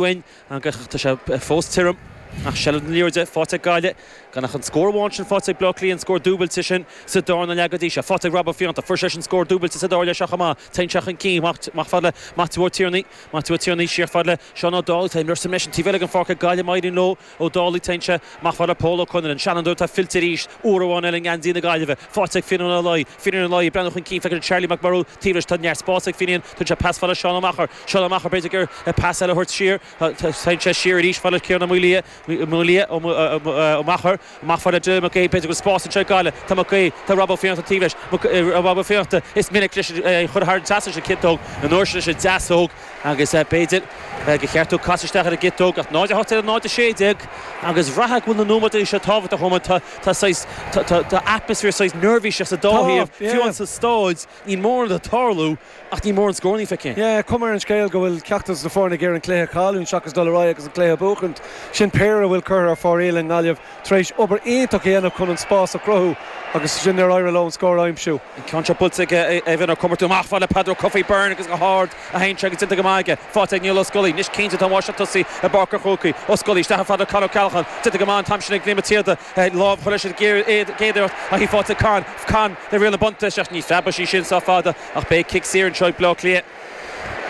uainn agus tá sé fós tirim ach seilbh na liathróide faighte ag Gaillimh. Gan ach an scór amháin sin faighte ag Baile Átha Cliath, an scór dúbailte sin sa darna leath go dtí seo, faighte ag Rob Ó Fiannachta. Fuair seisean scór dúbailte sa dara leath seo chomh maith. Téann sé chun cinn amach fad le Maitiú Ó Tiarnaigh. Maitiú Ó Tiarnaigh siar fad le Seán O'Dowd. Tá imreoir saor ar an taobh eile den pháirc ag Gaillimh. Éiríonn leo. Ó Dálaigh, Téann sé amach fad le Pól Ó Conaire, an Seanadóir atá fillte arís, uair amháin eile i ngeansaí na Gaillimhe. Faighte ag Fínín Ó Laoi, Fínín Ó Laoi ag breathnú chun cinn, feiceann sé Cillian Mac Diarmada taobh leis, tá neart spáis ag Fínín, tugann sé pas fad le Seán Ó Meachair. Seán Ó Meachair, b'fhéidir go bhfuil pas eile a thabhairt siar, téann sé siar arís fad le Ciarán Ó Maolaodha, Maolaodha, Ó Meachair, amach fad le Joe Mac Aoidh, b'fhéidir go bhfuil spás anseo ag Gaillimh, tá Mac Aoidh, tá Rob Ó Fiannachta taobh leis, Rob Ó Fiannachta, is minic leis í a chur thar an trasnán leis an gciotóg, an uair seo leis an deasóg, Agus b'fhéidir gur cheart dó casadh isteach ar an gciotóg, ach 0 18 le 0 16, agus bhraithfeá go bhfuil na nóiméid seo tábhachtach a Chomáin. Tá saghas, tá atmaisféar saghas neirbhíseach sa dá thaobh, fiú amháin sa stáid. Níl mórán ag tarlú, ach níl mórán scórannaí feicthe again. Yeah, cuma ar an scéal go bhfuil ceachtar den dá fhoireann ag iarraidh an cluiche a chailliúint seachas dul ar aghaidh agus an cluiche a bhuachaint. Sin péire a bhfuil curtha ar fóraoil ag Gaillimh. tar éis obair iontach a dhéanamh chun an spás a chruthú agus ansin níor éirigh leo an scór a aimsiú. An ceann seo buailte ag Evan Ó Comartúin. Amach fad le Peadar Ó Cofaigh, Byrne agus go hard a théann sé agus déanta go maith aige. Faighte ag Niall Ó Scolaí. Anois cinnte tá an bháisteach tosaí i bPáirc an Chrócaigh. Ó Scolaí isteach fad le Con Ó Ceallacháin. Déanta go maith an t-am sin ag Liam Mac an tSíoda. Lámh curtha aige sa gcéad iarracht ach í faighte ag Con. Con, riail na buntaiste ach ní bheidh sí sin sách fada ach beidh cic saor anseo ag Bleá Cliath.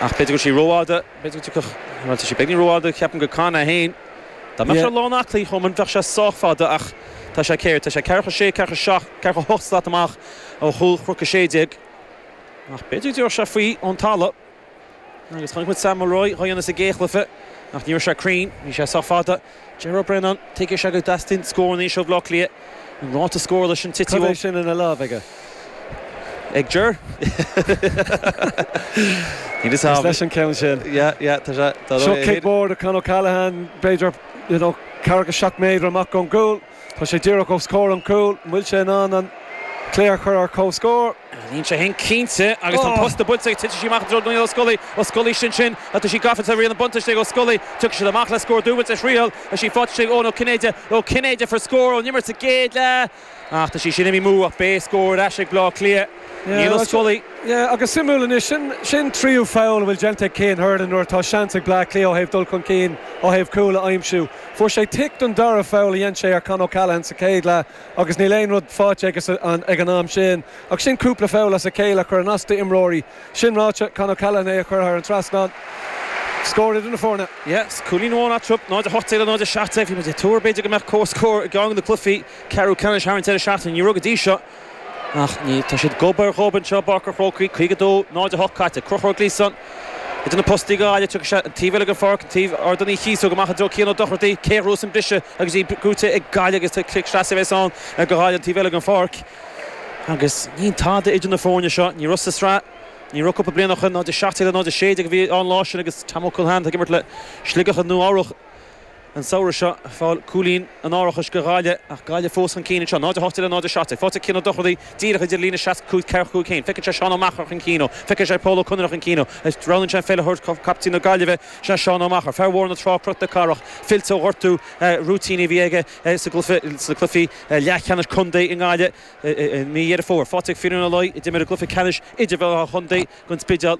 Ach b'fhéidir go raibh sí rófhada. Tá sé beagáinín rófhada, ceapaim do Con é féin. Dá mbeadh sé lán aclaí cheapaim bheadh sé sách fada ach tá sé, céard, tá sé ceathracha a sé, ceathracha a seacht, ceathracha a hocht slat amach ó chúl chnoc a sé déag. Ach b'fhéidir go dtiocfadh sé faoi ón talamh. Agus chonaic muid Sam Mulroy dhá dhéanamh sa gcéad chluiche ach ní raibh sé cruinn, bhí sé sách fada. Ger Brennan, tuigeann sé go dteastaíonn scór anois ó Bhaile Átha Cliath? An ráta scór leis an tí Cad é sin ina láimh aige? Ag Ger? Níl fhios a'm. Is leis an ceann sin. Yeah, yeah, tá sé. Seo cic mhór do Con O'Callaghan, b'fhéidir, you know, ceathracha seacht méadar amach ón gcúl. Tá sé díreach os comhair an chúil. An bhfuil sé in ann an cluiche a chur ar comhscór? Níl sé féin cinnte agus tá an posta buailte aige. Titeann sí amach i dtreo Niall O'Scully. O'Scully, Sin sin, tá sí gafa, riail an bhuntáiste ag O'Scully. Tiocfaidh siad amach le scór dúbailte ar thriail. Tá sí faighte ag Eoghan Ó Cinnéide. Ó Cinnéide fuair scór ón imirt sa gcéad leath ach tá sí sin imithe amú. Ach beidh cic saor ar ais ag Bleá Cliath. Niall O'Scully. Yeah agus suimiúil anois, sin an tríú foul a bhfuil déanta ag Cian Hernon nuair atá seans ag Bleá Cliath ó thaobh dul chun cinn ó thaobh cúl a aimsiú. Fuair sé tick don dara foul a dhein sé ar Con O'Callaghan sa chéad leath agus níl aon rud faighte aige ag an am sin ach sin cúpla foul as a chéile ag cur as d'imreoirí. Sin ráite, Con O'Callaghan é a chuir thar an trasnán scór idir na foirne. Cúilín amháin eatarthu, 0:18 le 0:17. Bhí muid ag tuar b'fhéidir go mbeadh comhscór i gceann de na cluichí ceathrú ceannais thar an deireadh seachtaine. Ní raibh go dtí seo. Ach ní, tá siad gob ar ghob anseo i bPáirc an Chrócaigh. 52 0 8 caite. Crochta ag Gleeson idir na postaí go gairid agus é an taobh eile den pháirc, an taobh Ardán Uí Chíosóg amach i dtreo Cian Ó Dochartaí. Cé a thabharfas an briseadh agus í brúite ag Gaillimh agus tá cic seasaimh fós ann ar go gairid an taobh eile den pháirc. Agus níl tada idir an dá fhoireann seo. Ní raibh sa sraith, ní raibh cúpla bliain ó shin. 0 17 le 0 16 a bhí ann an lá sin agus Tom Ó Concheanainn ag imirt le Sligeach Nua-Eabhrac. an samhradh seo, ag fáil cúilín an árachais do Ghaillimh, ach Gaillimh fós chun cinn anseo, 0-8 le 0-7 agus faighte ag Cian Ó Dochartaí díreach idir líne 65 ceathracha cúig féin, feiceann sé Seán Ó Meachair chun cinn uaidh, feiceann sé Pól Ó Conaire chun cinn uaidh, ach roghnaíonn sé an pheil a thabhairt chomh fada le captaen na Gaillimhe, sin é Seán Ó Meachair, fear Bhóthar na Trá Cnoc na Cathrach, fillte ó ghortú rúitín a bhí aige sa gcluiche leathcheannais contae i nGaillimh i mí Dheireadh Fómhair, faighte ag Finnian Ó Laoi a d'imir i gcluiche ceannais idirmheánach an chontae, An Spidéal.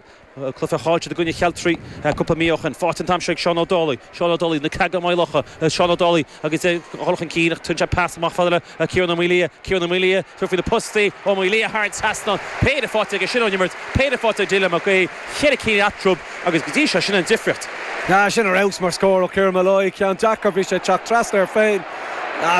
Cluiche caillte i gcoinne Chealtraí cúpla mí ó shin. Faighte an t-am seo ag Seán Ó Dálaigh. Seán Ó Dálaigh, An Creagán, Maigh Locha. Seán Ó Dálaigh agus é ag dul chun cinn ach tugann sé pas amach fada le Kieran Ó Maolaodha. Kieran Ó Maolaodha, tabhair faoi na postaí! Ó Maolaodha thar an trasnán. Péire faighte aige sin ón imirt. Péire faighte ag Dylan Mag Aoidh. Ceithre cinn eatarthu agus go dtí seo sin an difríocht. Sin ar fheabhas mar scór ó Kieran Molloy. Ceann deacair, bhí sé ag teacht trasna air féin.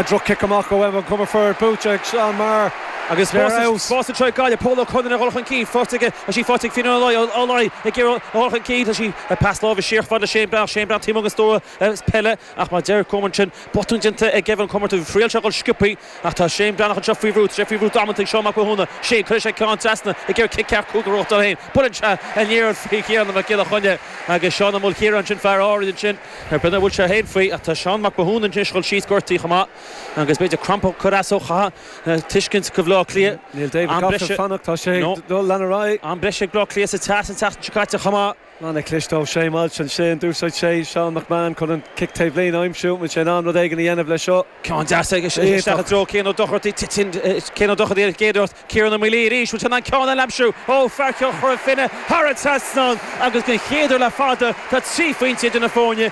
Droch-chic amach ó Evan Comerford, buaite ag Seán Maher agus is é ar fheabhas. Spás anseo ag Gaillimh, Pól Ó Conghaile ag dhul chun cinn, faighte aige, tá sí faighte ag Finnian Ó Laoi, Ó Laoi ag iarraidh a dhul chun cinn, tugann sé pas láimhe siar fad le Shane Breathnach, Shane Breathnach taobh amuigh den stua peile ach mar a deir Coman ansin, botún déanta ag Evan Comerford, thriail sé a dhul sciobthaí ach tá Shane Breathnach anseo faoi bhrú, tá sé faoi bhrú damanta ag Seán Mac Mathúna, Shane, cuirfidh sé ceann trasna ag iarraidh cic ceart cúil go ró-dhocht air féin, buaileann sé aniar faoi Thiernan Mac Giolla Choinnigh agus Seán Ó Maolchiaráin sin, fear na hAirde ansin. An brú a bhfuil sé féin faoi, tá Seán Mac Mathúna anois ag dul síos gortaí chomh maith agus b'fhéidir cramp ag cur as dó chaithfeá tuiscint do Bhaile Átha Cliath. Níl David Gough ag fanacht, tá sé ag dul leanacht ar aghaidh. Am breise ag Baile Átha Cliath sa teas an tseachtain seo caite chomh maith. An-chliste ó Shane Walsh ansin. D'úsáid sé Seán McMahon chun an cic taobhlíne a aimsiú. An bhfuil sé in ann rud éigin a dhéanamh leis seo? Ceann deas isteach i dtreo Cian Ó Dochartaí. Titeann Cian Ó Dochartaí ar an gcéad iarracht. Ciaran Ó Maolaodha arís, bhuel, tá an ceann eile aimsithe ó fear Chora Finne thar an trasnán agus den chéad uair le fada tá trí phointe idir na foirne.